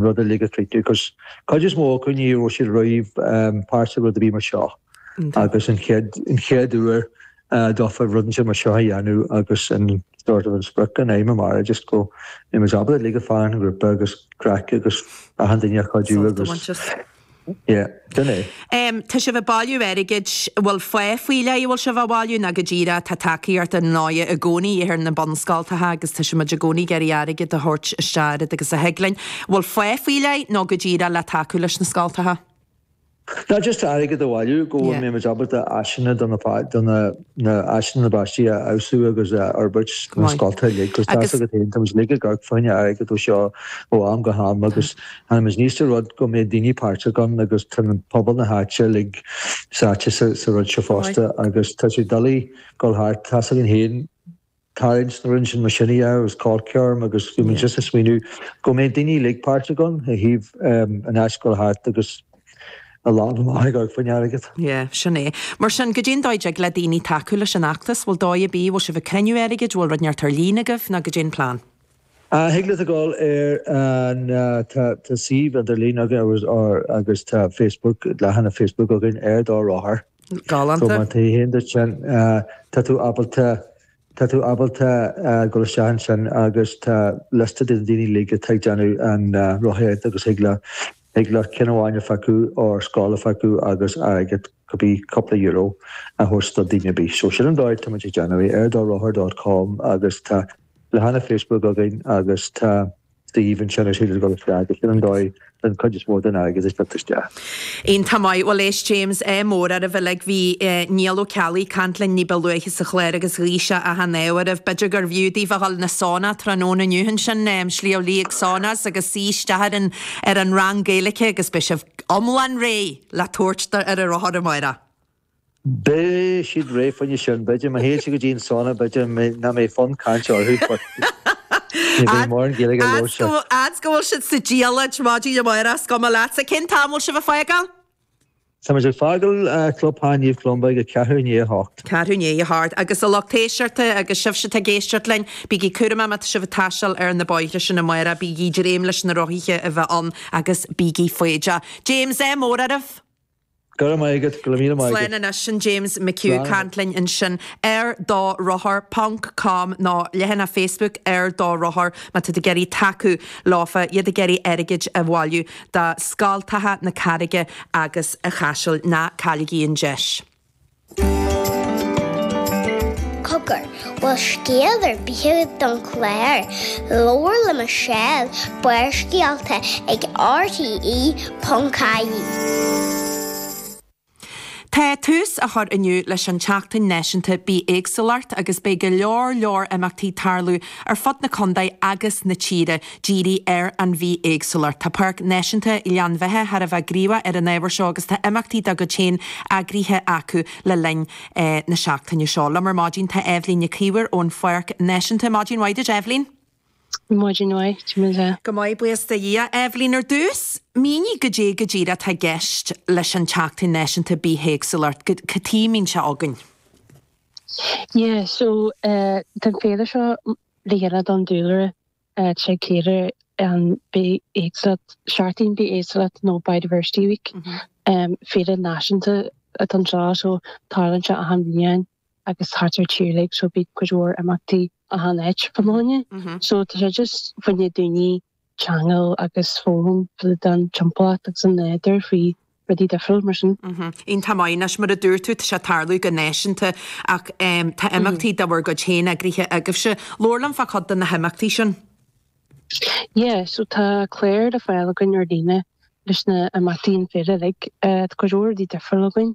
rud a leagan le chéile agus cuid is mó acu ní raibh siad riamh páirteach i rud a bhí mar seo agus an chéad an chéad uair a dófa rud inteacht mar seo a dhéanamh agus an sort of an sprioc an aidhm amárach just go mbeidh muid ábalta ligean fríd an ghrúpa agus craic agus achan duine a chuidiú agus Yeah, sin é. Tá sibh ag bailiú airgid, bhfuil fáth faoi leith a bhfuil sibh á bhailiú nó go díreach tá tacaíocht ar ndóighe i gcónaí ar na bunscoltacha agus tá siad i gcónaí ag iarraidh airgead a thabhairt isteach oiread agus a thig linn. Bhfuil fáth faoi leith nó go díreach le tacú leis na scoltacha? Ná just airgead a bhailiú go bhfuil Yeah. muid ábalta áiseanna do na, do na, na háiseanna na bpáistí a fheabhsú agus a fhorbairt go sna maith. scoltacha uilig. Agus tá's Agus. agat féin, tá muid uilig ag amharc fá choinne airgead ó seo ó am go ham Tá. agus tá muid ag iarraidh rud go mbeidh daoine páirteach ann agus tá pobal na háite uilig sáite sa rud seo Go maith. fosta agus tá sé doiligh dul thart, tá's againn féin, Tá na linesanna le cur chun cinn agus bhí muid just ag smaoineamh go mbeidh daoine uilig páirteach ann ó thaobh an a dhul thart agus ag dul amach ag amharc fá choinne airgead. Yeah, sin é. Mar sin, goidé an dóigh a dtig le daoine tacú leis an fheachtas, bhfuil dóigh ar bith, bhfuil sibh ag cruinniú airgid, bhfuil rud inteacht ar líne agaibh nó goidé an plean? Ah, thig leat a gabháil ar an, tá suíomh idirlín againn agus tá Facebook, leathanach Facebook againn ar do rothar. Go Galánta. maith, tá fhios agat féin. Tá tú ábalta, tá tú ábalta dul isteach ansin agus tá liosta de na daoine uilig atá ag déanamh an rothaíocht agus thig leat, thig leat ceann amháin a phiocadh nó scoil a phiocadh agus airgead, cibé cúpla euro, a thabhairt do duine ar bith. So sin an dóigh tá muid ag déanamh é, ar do rothar dot com agus tá leathanach Facebook againn agus tá. suíomh ansin is féidir dul isteach. Sin an dóigh an chuid is mó den airgead ag teacht isteach. Iontach maith. Bhuel éist James, ádh mór oraibh uilig bhí eh Niall Ó Ceallaigh caint linn níba luaithe sa chlár agus ghuigh sé achan ádh oraibh. B'fhéidir gurbh fhiú daoibh a dhul chuig na sauna tráthnóna inniu ansin em Sliabh Liag Saunas agus suí isteach ar an ar an rang Gaeilice agus beidh sibh iomlán réidh le tabhairt faoi ar an rothar amáireach. Beidh siad réidh fá choinne sin, b'fhéidir. Má théann siad go dtí an sauna, b'fhéidir nach mbeidh fonn cainte orthu, but ní bheidh mórán Gaeilge a labhairt acu. Fhad's go bhfuil siad sa diallait, maidin amárach is cuma leatsa. Cén t-am a bhfuil sibh ag fágáil? Tá muid ag fágáil Clubtheach Naomh Columba ag a ceathrú i ndiaidh a hocht. Ceathrú i ndiaidh a hocht. Agus a lucht éisteachta agus sibhse atá ag éisteacht linn, bígí cúramach má tá sibh ag taisteal ar na bóithre sin amárach, bígí ag dréim leis na rothaithe a bheith ann agus bígí foighdeach. James, ádh mór oraibh! Go raibh maith agat, go raibh míle maith Slán agat. anois sin James McHugh, Slán caint anois. linn ansin ar do rothar ponc com nó leathanach Facebook Ar Do Rothar má tá sibh ag iarraidh tacú leofa, iad ag iarraidh airgid a bhailiú do scoltacha na Carraige agus a Chaisil. Ná cailligí an deis. Cogar, bhfuil scéal ar bith agat don chlár, Labhair le Michelle, Barrscéalta ag RTE.ie. Tá tús á chur inniu leis an tSeachtain Náisiúnta Bithéagsúlacht agus beidh go leor leor imeachtaí ag tarlú ar fud na contae agus na tíre. Dírithe ar an bhithéagsúlacht. Tá Páirc Náisiúnta Ghleann Bheithe thar a bheith gníomhach ar an ábhar seo agus tá imeachtaí dá gcuid féin eagraithe acu le linn na seachtaine seo. Liom ar maidin tá Eibhlín Nic Íomhair ón Pháirc Náisiúnta. Maidin mhaith duit, Eibhlín. Maidin mhaith, Timlise. Go maith, buíochas do Dhia. Eibhlín, ar dtús, mínigh goidé go díreach atá i gceist leis an tSeachtain Náisiúnta Bithéagsúlacht. Cad chuige a mbíonn sé againn? Yeah, so, tá an féile seo le dhéanamh don dúlra Ag cíoradh an bithéagsúlacht, Seachtain Bithéagsúlacht nó Biodiversity Week. Féile náisiúnta atá anseo so tarlaíonn sé achan bhliain agus thart ar an tír uilig so bíonn cuid mhór imeachtaí achan áit fud na tíre. So tá sé just fá choinne daoine ceangal agus foghlaim fríd an timpeallacht agus an nádúr faoi rudaí difriúil mar sin. Iontach maith. Anois, mar a dúirt tú, tá sé ag tarlú go náisiúnta ach tá imeachtaí de bhur gcuid féin eagraithe agaibhse. Labhair liom fá chuid de na himeachtaí sin. Yeah, so tá clár le fáil againn ar líne leis na imeachtaí an féile uilig. Tá cuid mhór rudaí difriúla againn,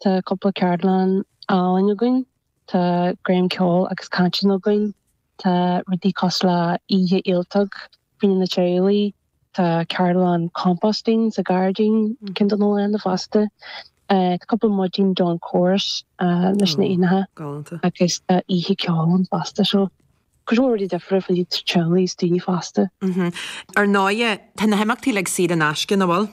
tá cúpla ceardlann ealaín againn, tá greim ceoil agus cainteanna againn, Tá rudaí cosúil le oíche ialtóg fá choinne na teaghlaigh, tá ceardlann composting sa ghairdín cinn don oileán fosta, tá cúpla maidin dawn chorus leis na éanacha agus tá oíche ceoil ann fosta. So cuid mhór rudaí difriúla fá choinne teaghlaigh is daoine fásta. Ar ndóigh, tá na himeachtaí uilig saor in aisce, nach bhfuil?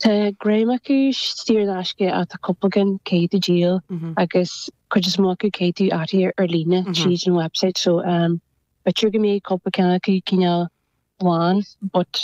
Tá greim acu saor in aisce ach tá cúpla ceann caithfidh tú díol agus cuid is mó acu caithfidh tú áirithiú ar líne tríd an website so b'fhéidir go mbeidh cúpla ceann acu cineál lán but